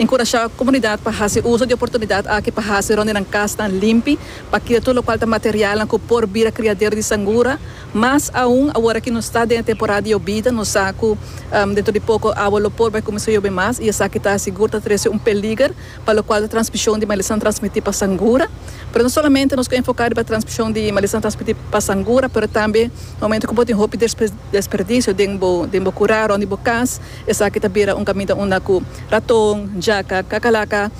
Enkurashá komunidat pa hasi uso di oportunidat aki pa hasi rònt di nan kasnan limpi pa kira tur lokual ta materialnan ku por bira kriadero di sangura. Mas aun awor aki nos ta den e temporada di yobida, nos sa ku dentro di poko awa lo por bai kuminsá yobe mas i esaki ta sigur ta trese un peliger pa lokual ta transmishon di malesa transmití pa sangura. Pero no solamente nos ke enfoká riba transmishon di malesa transmití pa sangura pero tambe na momentu ku bo tin hopi desperdisio den bo kurá rònt di bo kas, Esaki ta bira un kaminda unda ku raton, jaka, kakalaka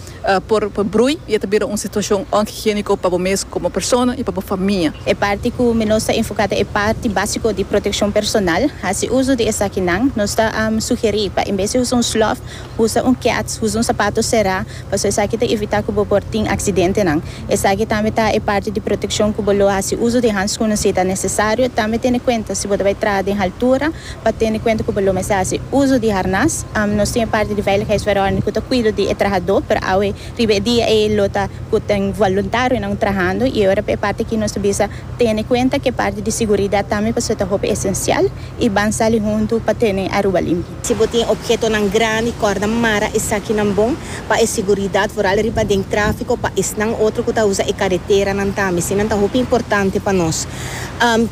por brui i e ta bira un situashon onhigiéniko pa bo mes komo persona i pa bo famia. E parti ku mi nos ta enfoká ta e parti básiko di protekshon personal. Hasi uso di esakinan. Nos ta sugerí pa en bes di usa un slòf, usa un keats, usa un sapato será, pasobra esaki ta evitá ku bo por tin aksidentenan. Esaki tambe ta e parti di protekshon ku bo lo hasi uso di hanskun si ta nesesario. Tambe tene kuenta si bo ta bai traha den haltura, Pa tene kuenta ku bo lo mester hasi uso di harnas, nos tin e parti di veiligheidsverordening ku ta kuido di e trahadó, pero awe riba e dia ei lo ta ku ta un voluntarionan trahando, i ora pa e parti aki nos ta bisa tene kuenta ku e parti di siguridat tambe pasobra ta hopi esensial i ban sali huntu pa tene Aruba limpi. Si bo tin ophetonan grandi kòrda mara esakinan bon pa e siguridat vooral riba den tráfiko pa esnan otro ku ta usa e kareteranan tambe. Eseinan ta hopi importante pa nos.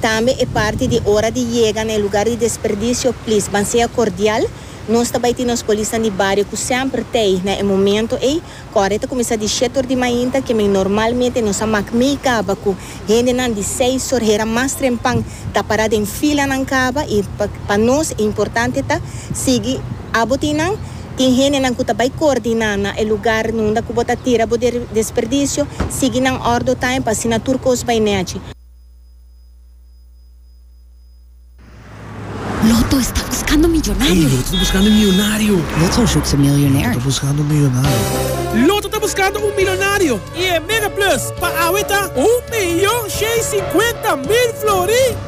Tambe e parti di ora di yega na e lugar di desperdicio, please ban sea cordial. Nos ta bai tin nos polisnan di bario cu semper t'ey na e momento ey. Cu awor e ta cuminsa di shete or di mainta, ke men normalmente nos a mak mey caba cu hendenan di seis or hera mas trempan ta para den filanan caba y pa nos e importante ta sigui abo tin nan. Tin hendenan ku ta bai koordiná na e lugar nunda ku bo ta tira bo desperdicio, sigui nan ordo taña pa asina tur kos bai nèchi. Loto esta buskando miyonario. Loto ta buskando un miyonario. Loto zoekt zijn miljonair. Loto ta buskando un milonario i e Mega Plus pa awe ta un miyon shei sinkuenta mil flori.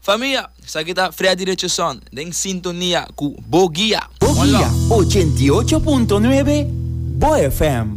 Famia, esaki ta Fria Direchoson den sintonia ku Bo Guia. Bo Guia ochenta i ocho punto nuebe, Bo FM.